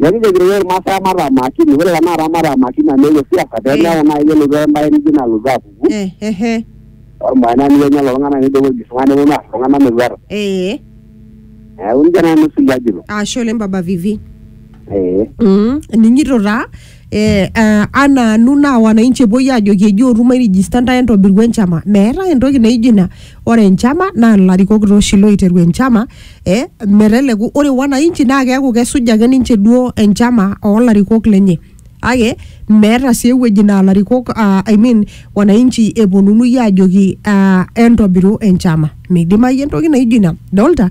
Neeku ijokito iyiook Irmaasai mataa makini, ore tenakata mataa makini amu eewuo siasa pee meeku naaji kelotu embae nijo ina alotu apuku Eh, eh, eh. ormae naa nijo kenya lelo tung'anak nijo keoji isung'ae neponu aar iltung'anak metuata. Eh, Neeku nijia nanu sii ajito. ashe oleng Baba Vivi. Eh. Mm, ening'ito taa. eh, ah, anaanu naa wananchi epuoi aajoki eji otu mairijista ntae entobiru enchama meetae entoki naijo ina ore enchama naa ilarikok taa oshi loiteru enchama eh, meteleku ore wananchi naa keeku kesuj ake ninche duo enchama oolarikok lenye kake meeta sii ewueji naa ilarikok ah, I mean wananchi eponunui aajoki ah, entobiru enchama midimayu entoki naijo ina dolta